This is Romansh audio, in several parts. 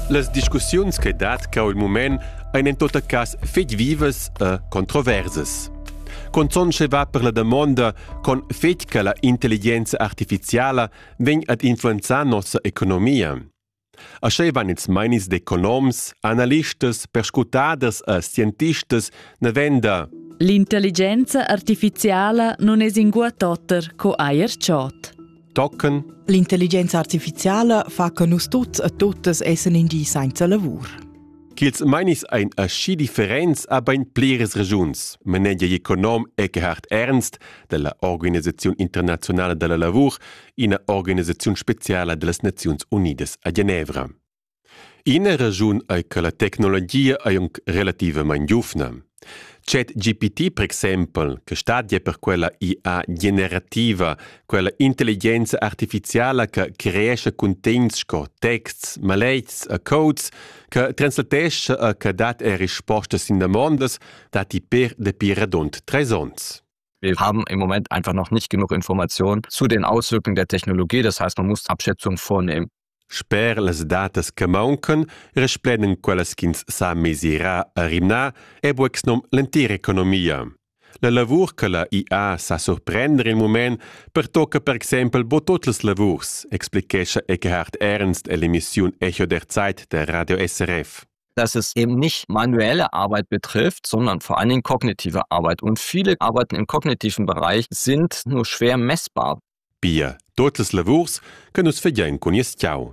Las discussiuns che dat cau il mument ein en tot cass fetg vivas e controversas. Conzon sche va per la damonda con fetg che la intelligenza artificiala vegn ad influenzar nossa economia. Aschei van ils meinis d'economs, analistas, perscrutaders e scientistas navenda L'intelligenza artificiala non es ingua totter co eir chod. tochen. L'intelligenza artificiala fa che nus tuts e totes essen in di senza lavur. Ch'ils mainis ein aschi differents a bein pliras regiuns, manegia econom Eckhard Ernst della Organisazione Internazionale della Lavur, ina organisazione speciala dellas Naziuns Unidas a Genevra. Ina raschun ei che la tecnologia ei aunc relativamein giuvna. ChatGPT per exempel, che stat ja per quella IA generativa, quella intelligenza artificiala che creesce cuntegns sco texts, maletgs e codes, che translatescha e che dat er rispostas sin damondas, datti per dapi radund treis onns. Wir haben im Moment einfach noch nicht genug Informationen zu den Auswirkungen der Technologie. Das heißt, man muss Abschätzung vornehmen. Sper las datas che mauncan resplendan quellas ch'ins sa mesirar a rimnar è bucs nom l'entira economia. La lavur che la IA sa surprender il mument pertocca per exempel bo tot las lavurs, explichescha Eckhard Ernstell'emissiun Echo der Zeit der Radio SRF. dass es eben nicht manuelle Arbeit betrifft, sondern vor allen Dingen kognitive Arbeit. Und viele Arbeiten im kognitiven Bereich sind nur schwer messbar. Pia totas lavurs che nus fagein cun nies tgau.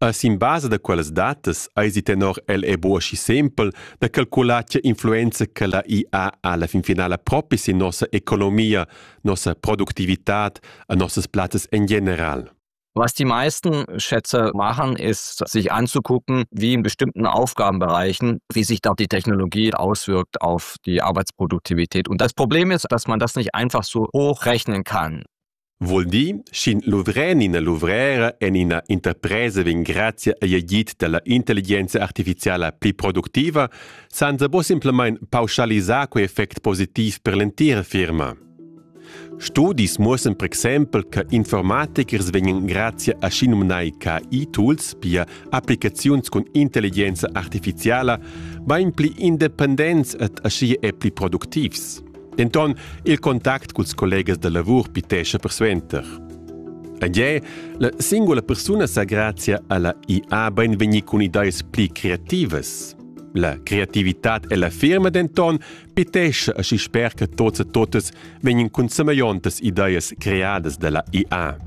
E sin basa da quellas datas eisi tenor el è buca schi sempel da calcular tgei influenza che la IA ha alla fin finala propi sin nossa economia, nossa productivitad e nossas plazzas en general. Was die meisten Schätze machen, ist, sich anzugucken, wie in bestimmten Aufgabenbereichen, wie sich da die Technologie auswirkt auf die Arbeitsproduktivität. Und das Problem ist, dass man das nicht einfach so hochrechnen kann. Vuol dir, sch'in luvrer ina luvrera en ina interpresa vegn grazia agl agid dalla intelligenza artificiala pli productiva, san se bo simplamain pauschalisar quei effect positiv per l'entira firma. Studis muossan per exempel che informatikers vegnan grazia a schinumnai KI-tools, pia applicaziuns cun intelligenza artificiala, bain pli independents ed aschia è pli productivs. Denton il contact culs collegas da lavur pitescha persuenter. Ed è, la singula persuna sa grazia alla IA bain vegnir cun ideas pli creativas. La creativitad e la firma denton Pitesce aschi sper che tots e totas vegnan cun semegliontas ideas creadas dalla IA.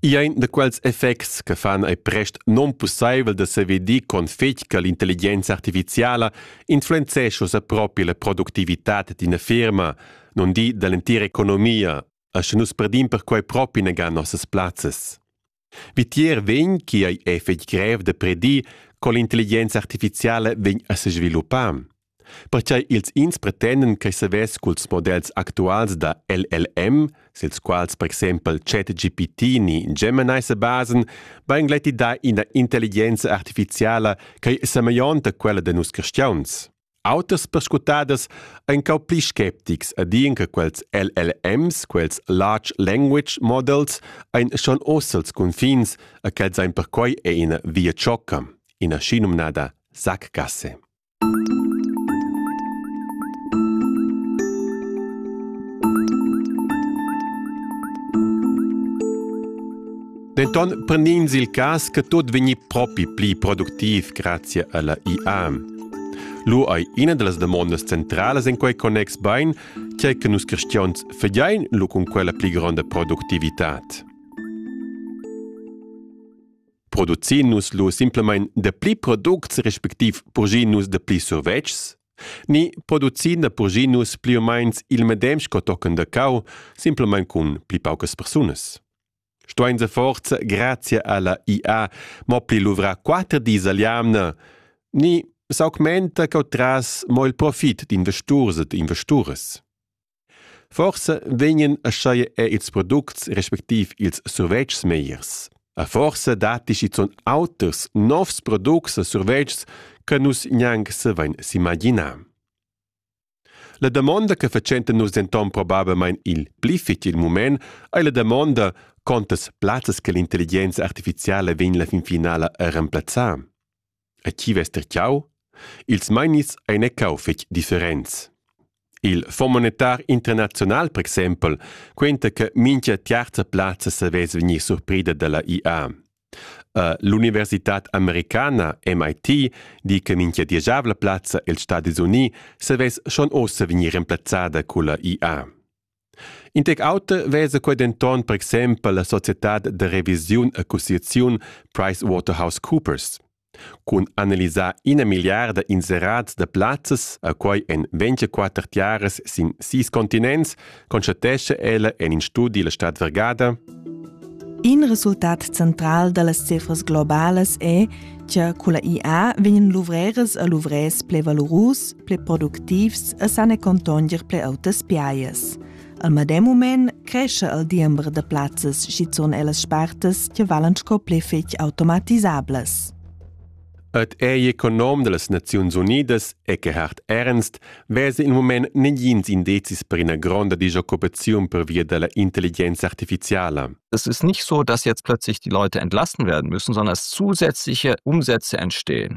I ein da quels effects che fan ei prest non pusseivel da sevedir con fetg che l'intelligenza artificiala influenzesce sa propi la productivitat d'ina firma, non di dall'entira economia, asche nus perdim perquei propi negan nossas plazzas. Vitier vegn chi ei è fetg grev da predir co l'intelligenza artificiala vegn a sesviluppar. Perquai ils ins pretenden che savess culs models actuals da LLM, sils quals per exempel ChatGPT ni Gemini se basen, vain gleiti da ina intelligenza artificiala che è semeglionta quella da nus cristiauns. Auters perscrutaders ein cau pli sceptics e dien che quels LLMs, quels Large Language Models, ein schon oz els confins e quels ein perquei è ina via ciocca, ina schinumnada sackgasse. Denton prend'ins il cass che tut vegni propi pli productiv grazia alla IA. Lu ei ina dallas damondas centralas en quei connex bein, tgei che nus cristians fagein lu cun quella pli gronda productivitad. Producin nus lu simplemein da pli products respektiv purgin nus da pli survetschs? Ni producin da purgin nus pli o meins il medem sco tochen da cau, simplemein cun pli paucas persunas? Stuein se forza grazia alla IA mo pli luvra quater dis al jamna. Ni s'augmenta cau tras mo il profit d'investurs ed investures. Forse vegnen aschaie e ils products respektiv ils survetschs meiers. A forse datti schizun auters novs products e survetschs che nus gnanc se vein s'imaginar. La damonda che fatschenta nus denton probablmein il pli fetg il mument ei la damonda contas plazzas che l'intelligenza artificiala vegn la fin finala a remplazzar. A chi vess terciau? Ils meinis ein e cau fetg differents. Il Fonds monetar internazional, per exempel, quenta che mincha terza plazza savess vegnir surprida dalla IA. L'universitad americana MIT di che mincha dieschavla plazza els Stadis Unii savess schon ossa vegnir remplazzada culla IA. In tec auter vesa quei denton per exempel la societad da revisiun accusiaziun PricewaterhouseCoopers. Cun analisar ina milliarda inserats da plazzas, a quai en 24 tiaras sin sis continents, constatescha ella en in studi la Stadt Vergata. In resultat central da las cifras globalas è che con la IA vegnan luvreras e luvrers ple valurus, ple productivs e san e contonger ple autas piaias. Al medem mument crescha il diember da plazzas schizun ellas spartas che valan sco pli fetg automatisablas. Et ei econom dellas Naziuns Unidas e che hart ernst vese il moment negins indezis per ina gronda disoccupaziun per via della intelligenza artificiala. Es ist nicht so, dass jetzt plötzlich die Leute entlassen werden müssen, sondern dass zusätzliche Umsätze entstehen.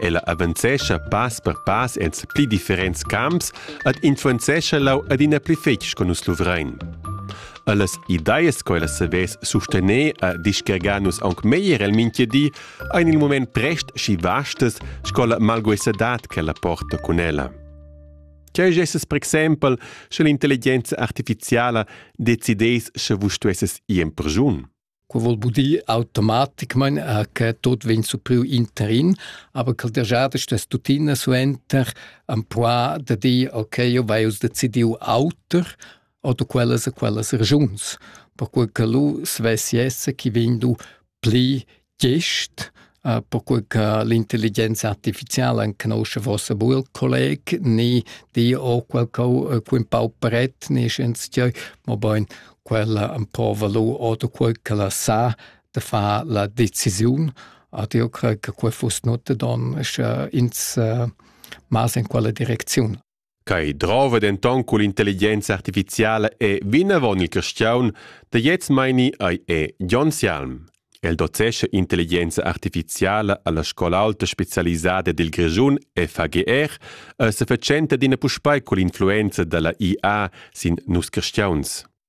Ella avanzescha pass per pass en pli differents camps ed influenzescha lau adina pli fetg co nus luvrein. Allas ideas co ella savess sustener e discargar nus aunc meglier el mintgadi ein il moment prest schi vastas sco la malguesadad che ella porta cun ella. Cheu gesses per exempel, sche l'intelligenza artificiala decidess sche vus stuesses ir in persun. Quo vol bu dir automaticmaing eh, che tuot vegn supriu interin, aber ch'el dagiada stess tuttina suenter ampois da dir ok, eu vai us decidiu auter oder quellas e quellas regiuns, perque che lu svessi esser chi vegn du pli gest perquei che l'intelligenza artificiala conosce vossa buel colleg ni di o quel co quin pau pret ni scienzieu mo bein quella un po valu oder quel che la sa de far la decisiun ad io crei che quei fuss not don sche ins mas in quella direcziun Quai drova denton cun l'intelligenza artificiala e vinavon il castiaun da gliez meini ei è Jon Sialm. El docescha intelligenza artificiala alla scola alta specialisada dil Grischun FAGR e se fatschenta d'ina puspei cun l'influenza dalla IA sin nus castiauns.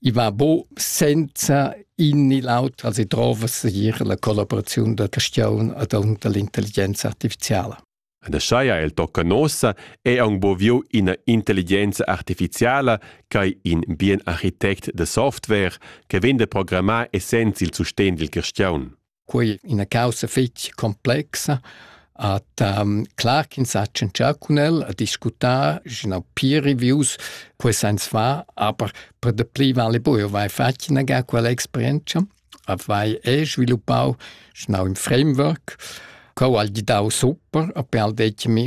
i va bo senza in ni l'auter als drova segir la collaboraziun da Castiaun ad unter l'intelligenza artificiala. Da schaia el tocca nossa è aung boviu ina intelligenza artificiala ch'ei in bien architect da software che vende programmar essens il sustegn dil Castiaun. quei ina caussa fetg complexa At um, clar ch'ins ha tschentschà cun el, a discutar, genau peer reviews, quei sens fa, aber per de pli vale bu, eu vai fatg inaga quella experienza, avai e sviluppau genau im Framework, co al gidau super, a per al detg mi,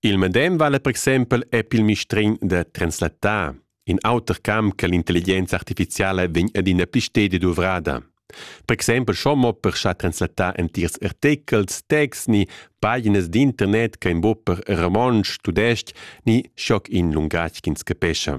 Il medem vala per exempel epp il mistregn da translattar, in auter camp che l'intelligenza artificiala vegn adina pli stedi duvrada. Per exempel schon mo per schar translattar entirs artechels, texts ni paginas d'internet che in buc per romontsch, tudestg ni schoc in lungatg ch'ins capescha.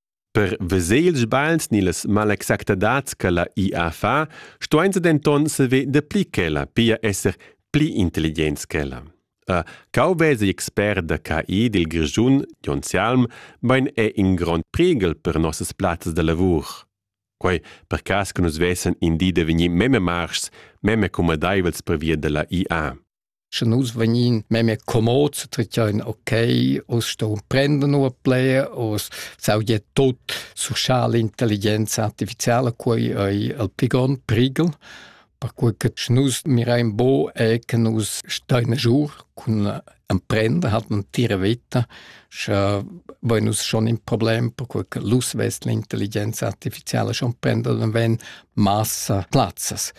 Per veser ils sbagls ni las malexactadads che la IA fa, stuein se denton saver dapli ch'ella, pia esser pli intelligents ch'ella. A cau vesa expert da CI dil Grischun, Jon Salm, bein è in grond priegel per nossas plazzas da lavur. Quei per cass che nus vessen in di da vegnir meme marschs, meme cumadeivels per via della IA. Sche nus vegnin memia comods, tracciain ok, us sto prenden ua player, us saudia tot sociala intelligenza artificiala, quei ei el pli grond prigel, perquei che sche nus mirain bo è che nus stein a jour cun emprender, hat man tira vita, sche vai nus schon in problem, perquei che l'us vest l'intelligenza artificiala schon prender, dann wenn massa plazzas.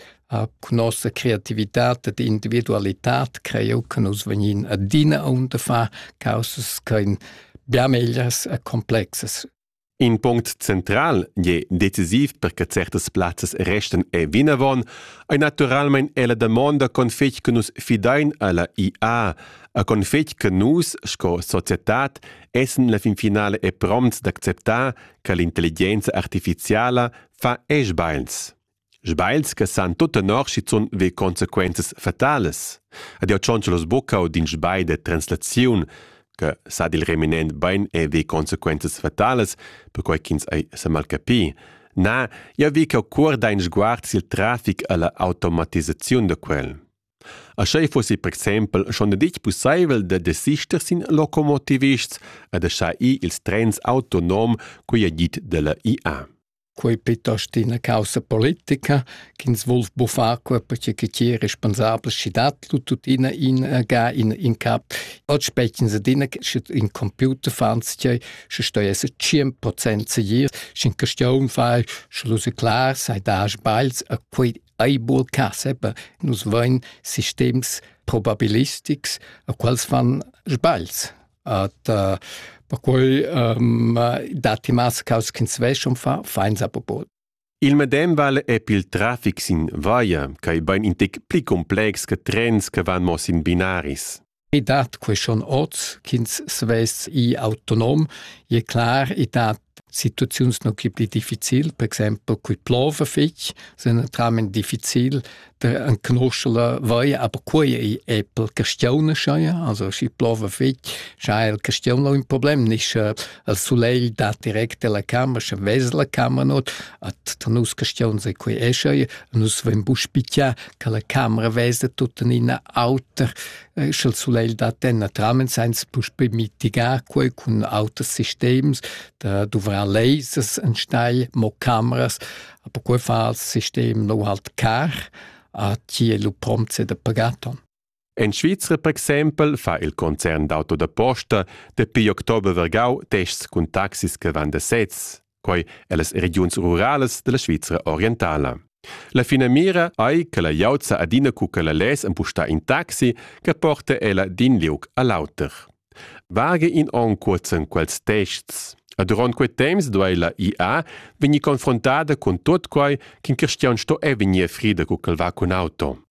cun nossa creativitat ed individualitad creu che nus vegnin adina aunta far causas ch'ein bia megliers e complexas. In punct central je decisiv per che certas plazzas restan e vinavon ei naturalmein ella damonda con fetg che nus fidein alla IA a con fetg che nus sco societad essen la fin finale e prompts d'acceptar che l'intelligenza artificiala fa esch beins. Sbagls che san tut tenor schizun ve consequenzas fatalas. Ed jau tschontschalos bucca u d'in sbagl de translaziun che sa dil reminent bein e ve consequenzas fatalas, perquai ch'ins ei semalcapi. Na, jau vi ch'jau cuorda in sguard sil trafic e la automatisaziun da quel. A schei fossi per exempel schon ditg pusseivel da desister sin locomotivists e da schar ir ils trens autonom, quei è dit dalla IA. quei piuttost ina caussa politica ch'ins vul buffar quei perche che ti è responsabel schi dat lu tuttina in äh, ga in in cap oggi specchins ad ina sche in computer fans ti sche stoi es 100% se je shin question fai sche lu se klar sei da sbails a quei eibul caseba nus vain sistems probabilistics a quals fan sbails At uh, perquai um, datti mas caus ch'ins veschum fa fainsa popol. Il medem val è pil traffic sin via, quai bain in tic pli complex che trens che van mo sin binaris. I dat que schon oz ch'ins svests i autonom, e clar, i dat Situaziuns nu chi pli difficil, per exaimpel cui plova fich, sun naturalmaing difficil da canuscher vai, aber quai ei eppel castionescha ja, also schi plova fich, scha ha il castion ün problem, nisch il sulegl dà direct dalla cama, scha vesa la cama not, a tra nus castions ei quai escha ja, nus vain bu spichà che la camera vesa tuttenina auter. eh, sch'el sulegl dat denna tramen sainz puspe mitigar quei cun auters sistems da duvrar lasers en steil, mo cameras, aber quei fa als sistem no halt car a chi è lu prompt da pagaton. En Svizra, per exempel, fa il concern d'auto da posta dapi october vergau tests cun taxis che van da sez. quai ellas regiuns ruralas della Svizra orientala. La finamira ei che la glieud sa adina cu che la less empustar in taxi che porta ella d'in liug all'auter. Vage in onn cuozzen quels tests. A durant quei temps duei la IA vegnir confrontada cun tot quai ch'in cristian sto e vegnir frida cu ch'el va cun auto.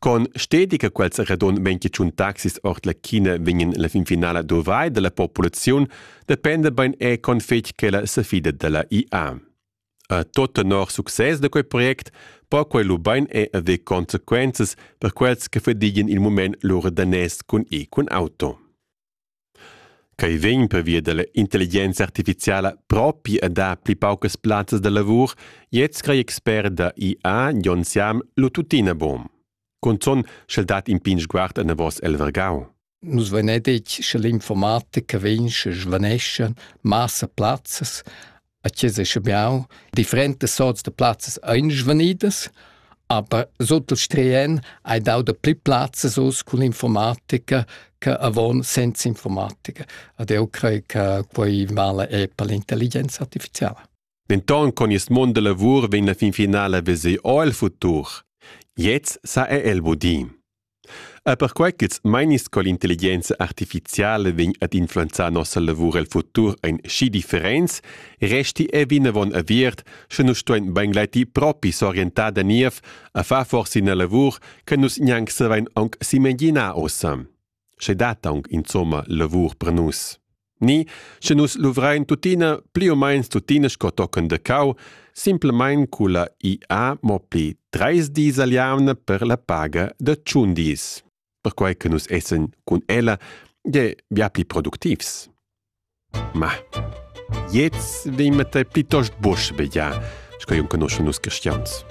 Con stedi che quels radon vegn tschuntà taxis ord la China vegnan la fin finala dovrai dalla populaziun dependa bein è con fetg ch'ella sefida dalla IA. A tot tenor success da quei project po quei lu bein è haver consequenzas per quels che fadigien il mument lur danès cun e cun auto. Quei vegn pervia dalla intelligenza artificiala propi a dar pli paucas plazzas da lavur, gliez crei expert da IA Jon Siam lu tuttina buc. Cunzun sch'el dat in pign sguard anavos el vargau. Nus vein detg che l'informatica vegn, sche svaneschan massa plazzas, A Chiesa Schibiau differentas sorts da plazzas ein svanidas, aber sut il strien hai dau da pli plazzas uss cun informatica che avon senza informatica. Ed eu crei che quei mala è per l'intelligenza artificiala. Denton con il mond da lavur vegn la fin finala veser o il futur. Jetzt sa è el budin. Er perquai ch'ils meinis co l'intelligenza artificiala vegn ad influenzar nossa lavur el futur ein schi differents, resti ei vinavon aviert, sche nus stuein beingleiti propi s'orientar da niev a far forsa ina lavur che nus gnanc savein aunc s'imaginar ossa. Sche dat aunc insomma lavur per nus. Ni, sche nus luvrein tuttina pli u meins tuttina sco tochen de cau, simplemein culla IA mo pli treis dis al jamna per la paga de tschun dis, perquei che nus essen cun ella je bia pli productivs. Ma, jetzt vimete plitost busch begia, sco jun conosce nus cristians.